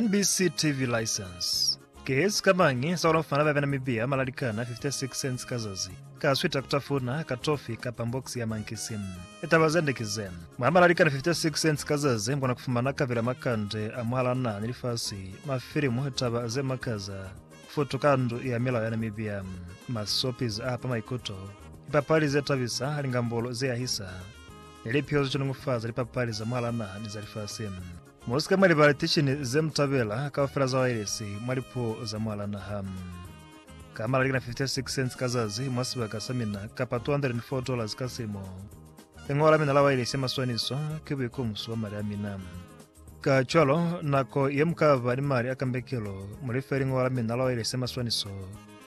NBC TV license ke sikamañi sa ku lafumana ba bena mibiya malalikana 56 cents ka zazi, ka swita ku tafuna, ka tofi, kapa mbokisi ya mankisi? Litaba zende ki ze, Mwa malalikana 56 cents ka zazi mukona kufumana kapila makande a mwahal'a naha ni lifasi, mafilimu, litaba ze makaza, futu ka ndu ya milao ya Namibia, ma soapies a hapa maikuto, lipapali ze tabisa, lingambolo ze yahisa, ni lipyozwi ca nungufaza lipapali za mwala naha ni za lifasi. Mu si ka mwa libala litishini ze mu tabela kaufela za wailesi mwa lipuo za mwala naha. Ka malali kana 56 cents ka zazi mwa sibaka sa mina kapa $204 ka silimo. Lingola la mina la wailesi ya maswaniso ki buikumuso bwa mali a mina. Kacwalo, nako ye mu ka ba ni mali a kambekelo, mu life lingola la mina la wailesi ya maswaniso.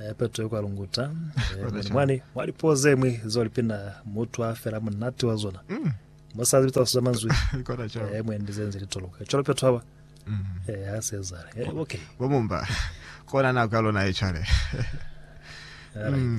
Eh, Petro kwa lunguta eh, mwani, mwani mwa lipuo ze mwi zo lipina mutu a fela munati wa zona mm. musazi bitsa kusuza manzwi eh, mwendi ze nzi litoloka cwalo Petro haba mm. eh, ha se zale eh, okay bo mumba kona na ka lona e chale right. mm.